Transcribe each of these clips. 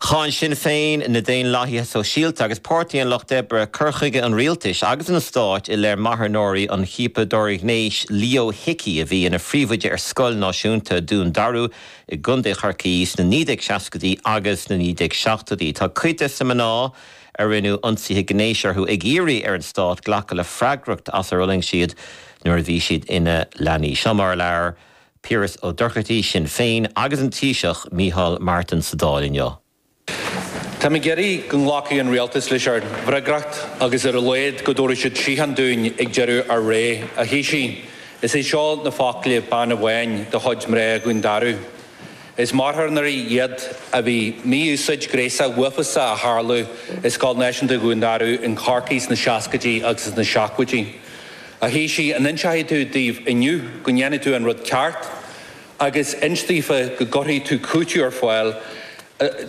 Cháin Sinn Féin, na Daonlathaithe Sóisialta agus Páirtí an Lucht Oibre cur chuige an rialtais agus an stáit i leith marthanóirí an chiapadóra ghnéis Leo Hickey, a bhí ina phríomhoide ar scoil náisiúnta Dún Darú i gContae Chorcaí sna 1960idí agus sna 1970idí. Tá cuid de na mná a rinneadh ionsaithe gnéis orthu ag iarraidh ar an stát glacadh le freagracht as ar fhulaing siad nuair a bhí siad ina leanaí. Seo mar a labhair. Piaras Ó Dochartaí, Sinn Féin, agus an Taoiseach, Micheál Martin, sa Dáil inniu. Tá muid ag iarraidh go nglacfaidh an Rialtas lena bhfreagracht agus ar a laghad go dtabharfaidh siad síocháin dúinn ag deireadh ár ré, a Thaoisigh. Is é seo na focla bean amháin de chuid mná Dhún Darú. Is marthanóirí iad den mhí-úsáid ghnéasach uafásach a tharla i Scoil Náisiúnta Dhún Darú i gCorcaigh sna seascaidí agus sna seachtóidí. A Thaoisigh, an inseoidh tú dóibh inniu go ndéanfaidh tú an rud ceart agus inse daofa go gcuirfidh tú cúiteamh ar fáil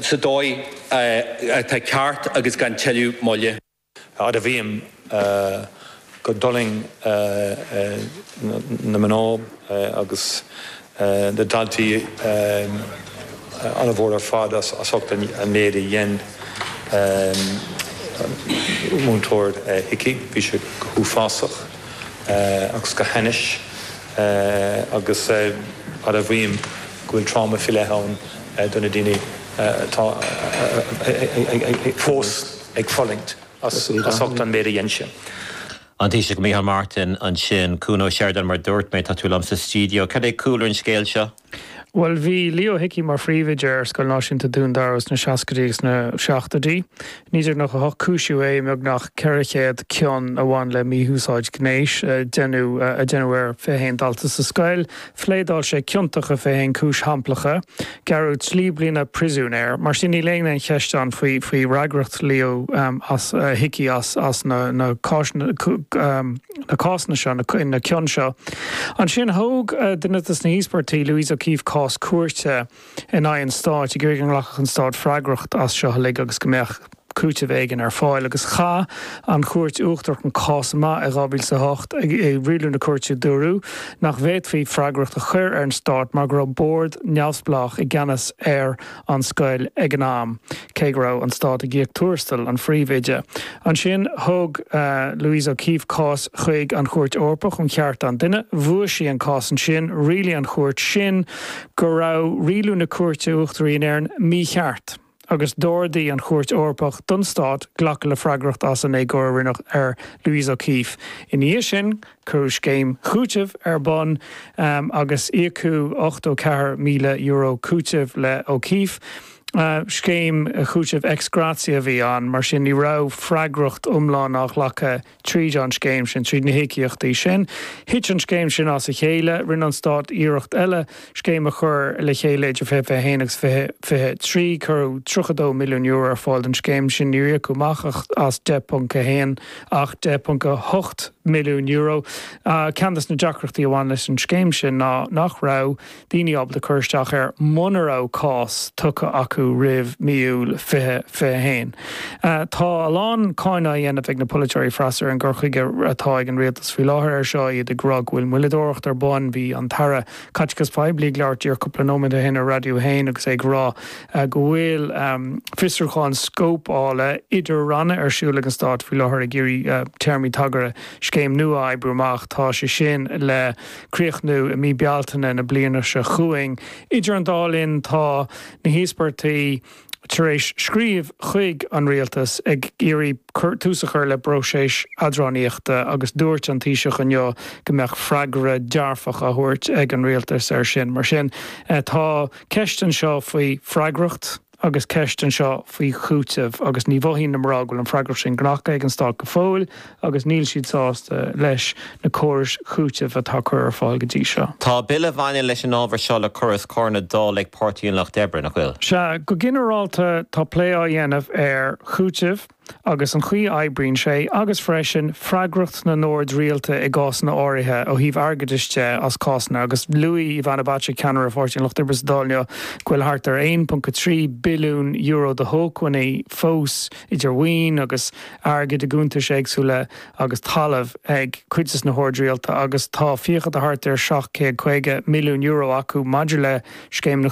sa dóigh atá ceart agus gan tuilleadh moille? Admhaím gur fhulaing na mná agus na daltaí an-mhór ar fad as ucht an méid a dhein Múinteoir Hickey. Bhí sé go huafásach agus go hainnis agus admhaím go bhfuil tráma faoi leith ann do na daoine atá fós ag fulaingt as ucht an méid a dhein sé. An Taoiseach Micheál Martin ansin. Cuan Ó Seireadáin, mar dúirt mé, tá tú liom sa stiúideo. Cad é cúlra an scéil seo? Bhuel, bhí Leo Hickey mar phríomhoide ar Scoil Náisiúnta Dún Dara sna seascaidí agus sna seachtóidí. 1998 cúisíodh é i mbeagnach 400 cion a bhain le mí-úsáid ghnéis a deineadh a deineadh ar 21 dalta sa scoil. Phléadáil sé ciontach i 21 cúis shamplach, gearradh trí bliana príosúin air. Mar sin, níl aon cheist ann faoi fhreagracht Leo Hickey as na cásanna seo, na cion seo. Ansin, thóg duine de na híospartaigh, Louise O'Keefe, cás cúirte. in aghaidh an stáit, ag iarraidh go nglacfadh an stát freagracht as seo uilig agus go mbeadh cúiteamh éigin ar fáil. Agus chaith an Chúirt Uachtarach an cás amach i 2008. I rialú na cúirte dúradh nach bhféadfaí freagracht a chur ar an stát mar go raibh bord neamhspleách i gceannas ar an scoil ag an am. cé go raibh an stát ag íoc tuarastail an phríomhoide. Ansin thóg Louise O'Keeffe cás chuig an Chúirt Eorpach um Chearta an Duine. Bhuaigh sí an cás ansin. Rialaigh an chúirt sin go raibh rialú na Cúirte Uachtaraí in Éirinn mícheart agus d'ordaigh an Chúirt Eorpach don stát glacadh le freagracht as an éagóir a rinneadh ar Louise O'Keeffe. Ina dhiaidh sin cuireadh scéim chúitimh ar bun agus íocadh €84,000 cúitimh le O'Keeffe. Scéim chúitimh ex gratia a bhí ann, mar sin ní raibh freagracht iomlán á ghlacadh tríd an scéim sin, tríd na híocaíochtaí sin. Thit an scéim sin as a chéile. Rinne an Stát iarracht eile scéim a chur le chéile idir 2021 agus 2023. Cuireadh €32 milliún ar fáil don scéim sin. Níor íocadh amach ach 10.1, €10.8 milliún. Ceann de na deacrachtaí a bhain leis an scéim sin ná nach raibh. daoine ábalta cur isteach air muna raibh cás tugtha acu roimh mí Iúil 2021. Tá a lán cáineadh á dhéanamh ag na polaiteoirí freasúra ar an gcur chuige atá ag an rialtas faoi láthair air seo, iad ag rá go bhfuil moilleadóireacht ar bun. Bhí an tAire Caiteachais Phoiblí ag labhairt díreach cúpla nóiméad ó shin ar Radio 1 agus é ag rá go bhfuil fiosrúchán scóipeála idir-ranna ar siúl ag an stát faoi láthair ag iarraidh téarmaí tagartha scéim nua a oibriú amach. Tá sé sin le. críochnú i mí Bealtaine na bliana seo chugainn. Idir an dá linn tá na híospartaigh tar éis scríobh chuig an Rialtas ag iarraidh tús a chur le bpróiseas eadránaíochta agus dúirt an Taoiseach inniu go mbeadh freagra dearfach á thabhairt ag an Rialtas air sin. Mar sin tá ceist anseo faoi freagracht. agus ceist anseo faoi chúiteamh agus ní mhothaíonn na mná go bhfuil an freagracht sin glactha ag an stát go fóill agus níl siad sásta leis na córais chúitimh atá curtha ar fáil go dtí seo. Tá bille a bhaineann leis an ábhar seo le cur os comhair na Dála ag Páirtí an Lucht Oibre, nach bhfuil? Sea, go ginearálta tá plé á dhéanamh ar chúiteamh. agus an chaoi a oibríonn sé, agus freisin freagracht na n-ord rialta i gcásanna áirithe ó thaobh airgeadais de as cásanna, agus luaigh Ivana Bacik, ceannaire Pháirtí an Lucht Oibre sa Dáil inniu, go bhfuil thart ar €1.3 billiún de shócmhainní fós, idir mhaoin agus airgead i gcuntais éagsúla agus talamh, ag cuid de na hoird rialta agus tá fiacha de thart ar €750 milliún acu maidir le scéimeanna